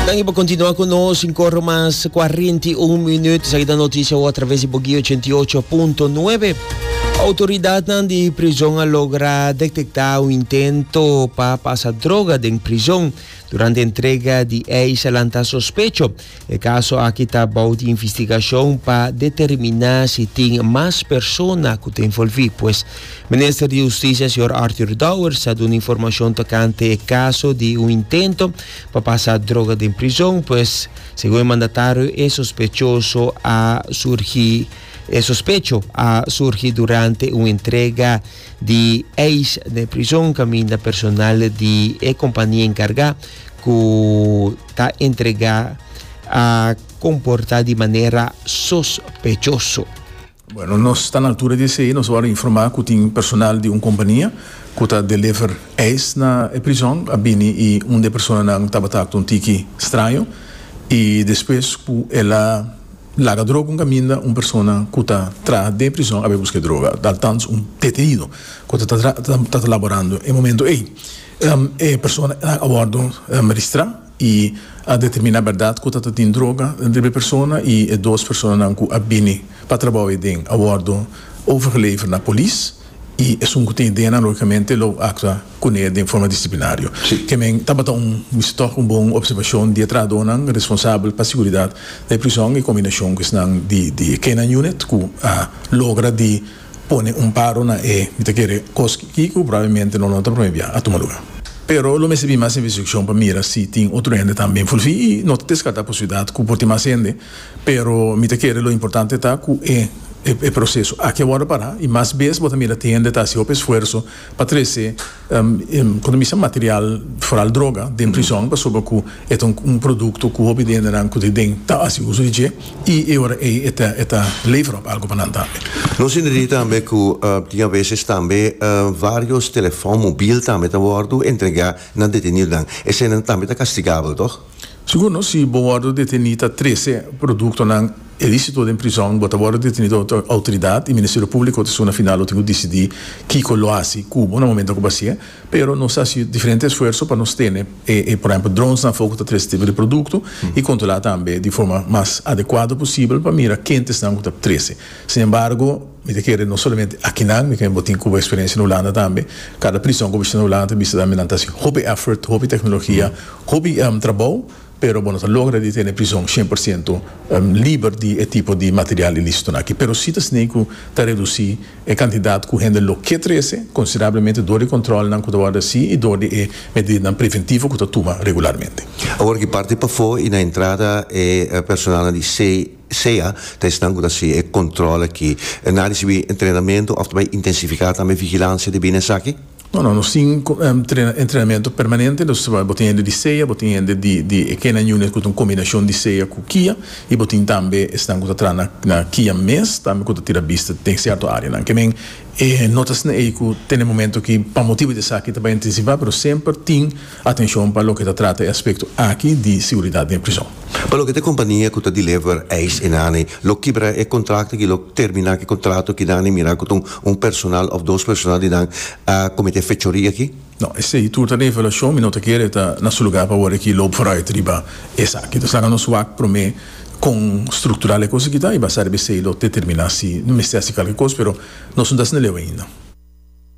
Danki pa kontinua ku nos in kor mas kuarenta i un minüt. Esaki ta notisia wou a traves di Bogio ochenta i ocho punto nuebe. Outoridatnan di prizon a logra detektá un intento pa pasa droga den prizon durante entrega di eis a lanta sospecho. E kaso aki ta bou di investigashon pa determiná si tin mas persona ku ta envolví. Pues. Minister di Hustisia señor Arthur Dowers a duna informashon tokante e kaso di un intento pa pasa droga den prizon, pues segun e mandatario e sospechoso a surgi e sospecho a surgi durante un entrega di eis den prizon kaminda personal di e kompania enkarga ku ta entrega a komporta di manera sospechoso. Bueno, nos ta na altura di esei. Nos a wòrdu informá ku tin personal di un kompania ku ta deliver ijs na e prizòn a bini i un di e personanan tabata aktua un tiki straño i despues ku el a laga droga un kaminda un persona ku ta traha den e prizòn a bai buska e droga altans un detenido ku ta ta ta laborando e momentu ei. E personanan a wòrdu ristrá. y a determina berdad cu ta ta tin droga dentro di e persona y e dos personanan cu a bini pa trabao eden a wordo overgelever na polis y esun cu tin idenan logicamente lo actua cune den forma disciplinario. Ke men tabata un wist toch un bon observacion di e trahadonan responsabel pa seguridad na e prison en combinacion cu esnan di di e K-9 unit cu a logra di pone un paro na e mi ta kere kos ki ku probablmente no lo ta prome bia a tuma luga. Pero lo mester bin mas investigashon pa mira si tin otro hende tambe fulfí i no ta deskartá posibilidat ku por tin mas hende, pero mi ta kere lo importante ta ku e e proseso aki a wòrdu pará i mas bes bo ta mira tin hende ta hasi hopi esfuerso pa trese Economisa material, foral droga, den prizon pasobra cu e ta un producto cu hopi di hendenan cu ta ayi den ta haci uso di dje y e ora ey e ta e ta lever op algo pa nan tambe. Nos tin diri tambe cu tin a veces tambe varios telefon mobil tambe ta wordo entrega na detenidonan. Eseynan tambe ta castigabel, toch? Segundo, si bo wordo deteni ta trece productonan ilicito den prizon, bo ta wordo deteni door e autoridad y Ministerio Publico ta suna final lo tin cu dicidi kico lo haci cubo na momento cu bo haci'e. Pero nos ta haci diferente esfuerzo pa nos tene e por ehemplo dronesnan afo cu ta trece tipo di producto y controla tambe di forma mas adecuado posibel pa mira kentesnan cu ta trece. Sin embargo. Mi ta kere no solamente akinan, mi kere bo tin Cuba experiencia na Hulanda tambe, cada prison cu bo bishita na Hulanda ta bishita tambe nan ta haci hopi effort, hopi tecnologia, hopi trabou, pero bo no ta logra di tene prison cien por ciento liber di e tipo di material iliciton aki, pero si ta sneei cu ta reduci e cantidad cu hende lo ke trece considerablemente door di controlnan cu ta wordo haci y door di e medidanan preventivo cu ta tuma regularmente. Awor ki parti pafo y na entrada e personalnan di C. sea ta esnan cu ta haci e control aki, e na ricibi entrenamento of ta bay intensifica tambe vigilancia di bini esaki? No, no, nos tin entrenamento permanente, nos ta bay, bo tin hende di sea, bo tin hende di e canine unit cu ta un combinacion di sea cu kia, y bo tin tambe esnan cu ta traha na kia mes tambe cu ta tira bista den cierto areanan. Kemen e notasnan ey cu tene momento aki pa motibo di esaki ta bay intensifia, pero semper tin. Atencion pa loke ta trata e aspecto aki di seguridad den prison. Pa loke ta e compania cu ta deliver eis enaney, lo kibra e contracto aki lo termina cu e contrato cu nan e mira cu ta un personal of dos personal di nan a comete fechoria aki. No, esey tur ta revelacion, mi no ta kere ta na su lugar pa awor aki loop vooruit riba esaki. Nos laga nos wak prome con structural e cos aki ta y basá riba esey lo determina si no mester haci calke cos, pero nos no ta haci naleu ainda.